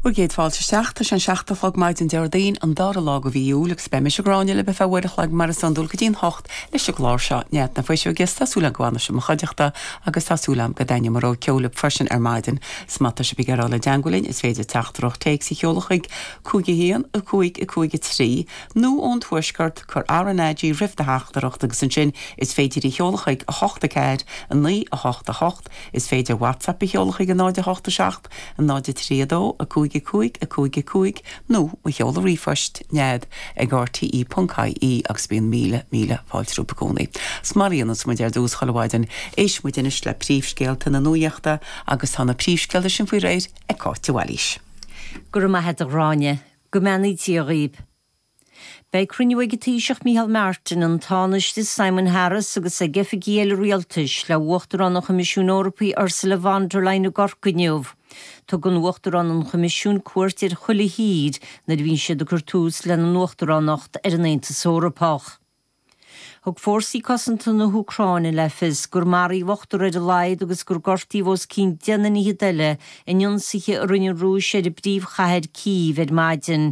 Bhur gcéad fáilte isteach. Tá sé an seacht a chlog maidin Déardaoin, an dara lá de mhí Iúil, agus beidh mise, Gráinne, libh ar feadh uair a chloig mar is iondúil go dtí an hocht leis an gclár seo. Nead na Fuiseoige agus tá súil agam go bhfanfaidh sibh i mo chuideachta agus tá súil agam go dtaitneoidh mo rogha ceoil libh freisin ar maidin. Is má tá sibh ag iarraidh a dhul i dteangmháil linn is féidir teachtaireacht téacs a sheoladh chuig 51553 nó ón tuaisceart cuir RnaG roimh do theachtaireacht agus ansin is féidir í a sheoladh chuig 84988. Is féidir WhatsApp a sheoladh chuig 0 8 7 0 3 2 5 5 5 5 nó mo sheoladh ríomhphoist, Nead ag rte.ie agus bíonn míle, míle fáilte rompu i gcónaí. Is mar a dhéananns muid ar dtús chuile mhaidin, éistfidh muid anois le príomhscéalta na nuaíochta agus tá na príomhscéalta sin faoi réir ag Cáit de Bhailís. Go raibh maith agat, a Ghráinne. Go mbeannaí Dia dhaoib. Beidh cruinniú ag an Taoiseach Micheál Martin, an Tánaiste Simon Harris agus ag oifigigh eile rialtais le hUachtarán an Choimisiúin Eorpaigh Ursula von der Leyen i gCorcaigh inniu. Tugann Uachtarán an Choimisiúin cuairt ar chuile thír nuair a bhíonn siad ag cur tús lena nUachtaránacht ar an Aontas Eorpach. Thug fórsaí cosanta na hÚcráine le fios gur maraíodh ochtar ar a laghad agus gur gortaíodh os cionn deichniúr ar fhichid eile in ionsaithe a rinne an Rúis ar an bpríomhchathair Cív ar maidin.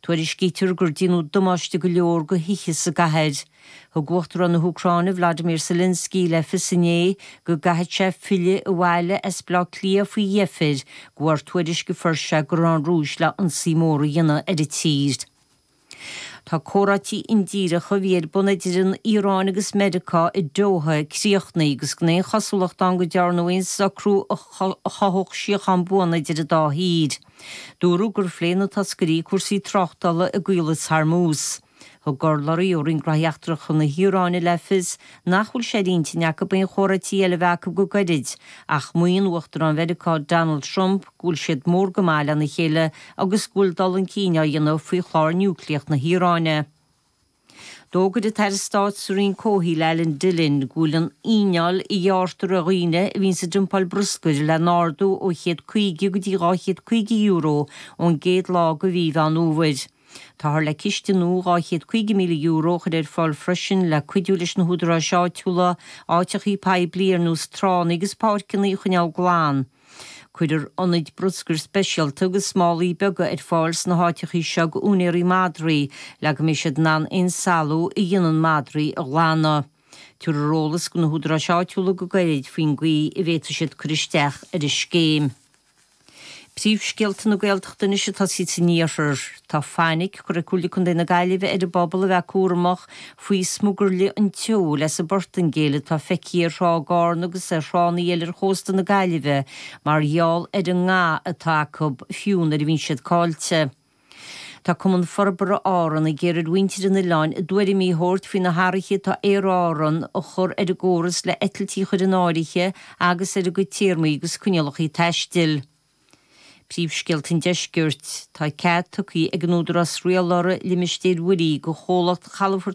Tuairiscítear gur déanadh damáiste go leor do thithe sa gcathair. Thug Uachtarán na hÚcráine Vladimir Zelensky le fios inné go gcaithfidh sé filleadh abhaile as Bleá Cliath faoi dheifir de bharr tuairisc a fuair sé go raibh an Rúis le hionsaí mór a dhéanamh ar an tír. Tá comhráití indíreacha a bhí ar bun idir an Iaráin agus Meiriceá i Doha críochnaithe agus gan aon chosúlacht ann go ndearnadh aon socrú a chothódh síochán buan idir an dá thír. Dúradh gur phléigh na toscairí cúrsaí tráchtála i gCaolas Hormuz. Thug urlabhraí ó Roinn Gnóthaí Eachtracha na hIaráine le fios nach bhfuil sé ar intinn acu aon chomhráití eile a bheith acu go gairid, ach maíonn Uachtarán Mheiriceá Donald Trump, go bhfuil siad mór go maith lena chéile agus go bhfuil dul chun cinn á dhéanamh faoi chlár niúcléach na hIaráine. D'fhógair an tAire Stáit sa Roinn Comhshaoil Alan Dillon go bhfuil an fhíneáil a ghearrtar ar dhaoine a bhíonns ag dumpáil bruscair le n-ardú ó €150 go dtí €250 ón gcéad lá de mhí Mheán Fhómhair. Táthar le ciste nua €250,000 a chur ar fáil freisin le cuidiú leis na húdaráis áitiúla áiteachaí poiblí ar nós tránna agus páirceanna a choinneáil glan. Cuirfear ionaid bruscair speisialta agus málaí beaga ar fáil sna háiteachaí seo d'úinéaraí madraí le go mbeidh siad in ann aon salú a dhéanann madraí a ghlanadh. Tabharfar eolas do na hÚdaráis Áitiúla go gairid faoin gcaoi a bhféadfaidh siad cur isteach ar an scéim. Príomhscéalta na Gaeltachta anois ag tosaí san Iarthar. Tá fainic curtha ag Comhairle Contae na Gaillimhe ar an bpobal a bheith cúramach faoi smugairle an tseoil as an bPortaingéil atá feicthe ar thrá Garn agus ar thránna eile ar chósta na Gaillimhe mar gheall ar an nga atá acu fiú nuair a bhíonn siad caillte. Tá Cumann Forbartha Árann ag iarraidh ar mhuintir na n-oileán a dtuairimí a thabhairt faoi na hathruithe atá Aer Árann a chur ar an gcóras le eitiltí a chur in áirithe agus ar a gcuid téarmaí agus coinníollacha taistil. Príomhscéalta an Deiscirt, Tá cead tugtha ag an Údarás Rialála Limistéir Mhuirí do Chomhlacht Chalafort